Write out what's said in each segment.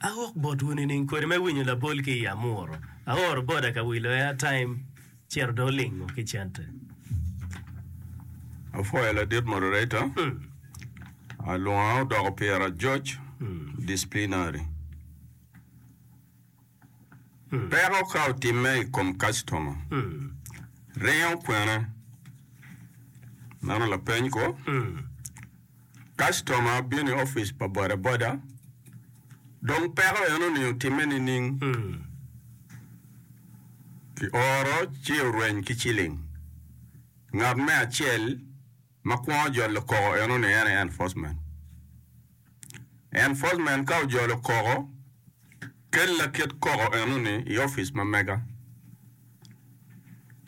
Awok botwu nining kwede me winyo labol ki i Amuru? Aoro boda ka wilo airtime cito dong olingo ki cente. Apwoyo ladit moderator, alwonga odoko pira ajoc, disciplinary. Peko ka otimme i kom kacitoma, ringo kwene? Meno lapeny kwo? Kacitoma bino i opic pa bodaboda, dong peko en oningo otimme nining? Ki oro ci orweny ki ciling. Ngat me acel ma kwongo jolo koko eno ni en aye enforcement. Enforcement ka ojolo koko, kel lakit koko eno ni i opic ma mega.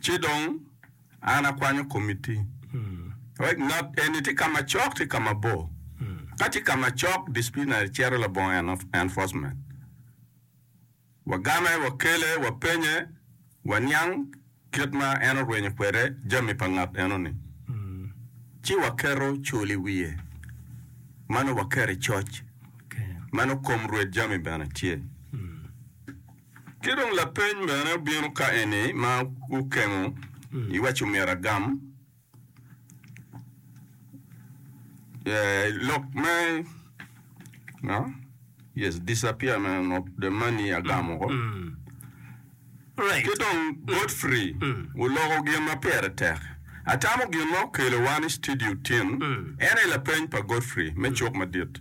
Ci dong. An akwanyo komiti. Rec not eni tye kama cok tye kama bor. Ka tye kama cok disciplinary cito labongo enforcement. Wagame, wakele, wapenye, waniang kit ma en orwenyo kwede jami pa ngat eno ni. Ci waketo cul i wiye. Mano waketo i coc. Mano kom rwed jami bene tye. Ki dong lapeny mene obino ka eni ma gukengo iwaco myero agam lok me no yes disappear me of the money agamo ko ki dong Godfrey oloko gin ma pire tek atamo gin ma okelo wa ni studio tin en aye lapeny pa Godfrey me cuk madit.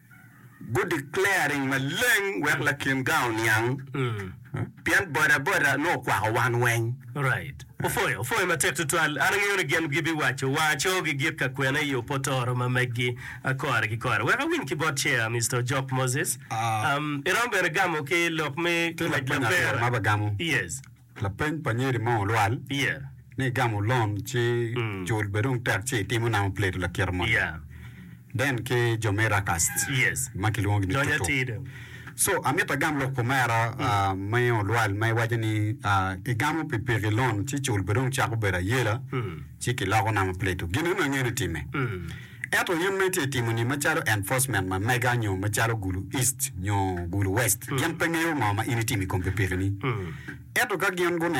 Gu declaring maleng wek lakin gang oniang pien boda boda nongo okwako wan weng. Right. Opwoyo, opwoyo matek tutwal. An angeyo ni gin gibi waco wa co gi git ka kwena iyo potoro ma meggi a kore ki kore. Wek awiny ki bot chair Mister Ojok Moses, um, iromo bene gamo ki lok me ngwec labera? Yes. Lapeny pa nyeri mo olwal ni igamo loan ci cul bed dong tek ci itimo namo Plato lakira moni then ki jo me Rakas ma kilwongo gini Tutu so amito agam lok kumera me olwal ma iwaco ni igamo pi piki loan ci cul bed dong cako bedo ayela ci kiloko namo Plato gin eno angeyo ni time. Ento in ma itye timo ni macalo enforcement ma mega nyo macalo gulu east nyo gulu west gin pe ngeyo ngo ma in itimo ikom pikipiki ni. Ento ka gin guneno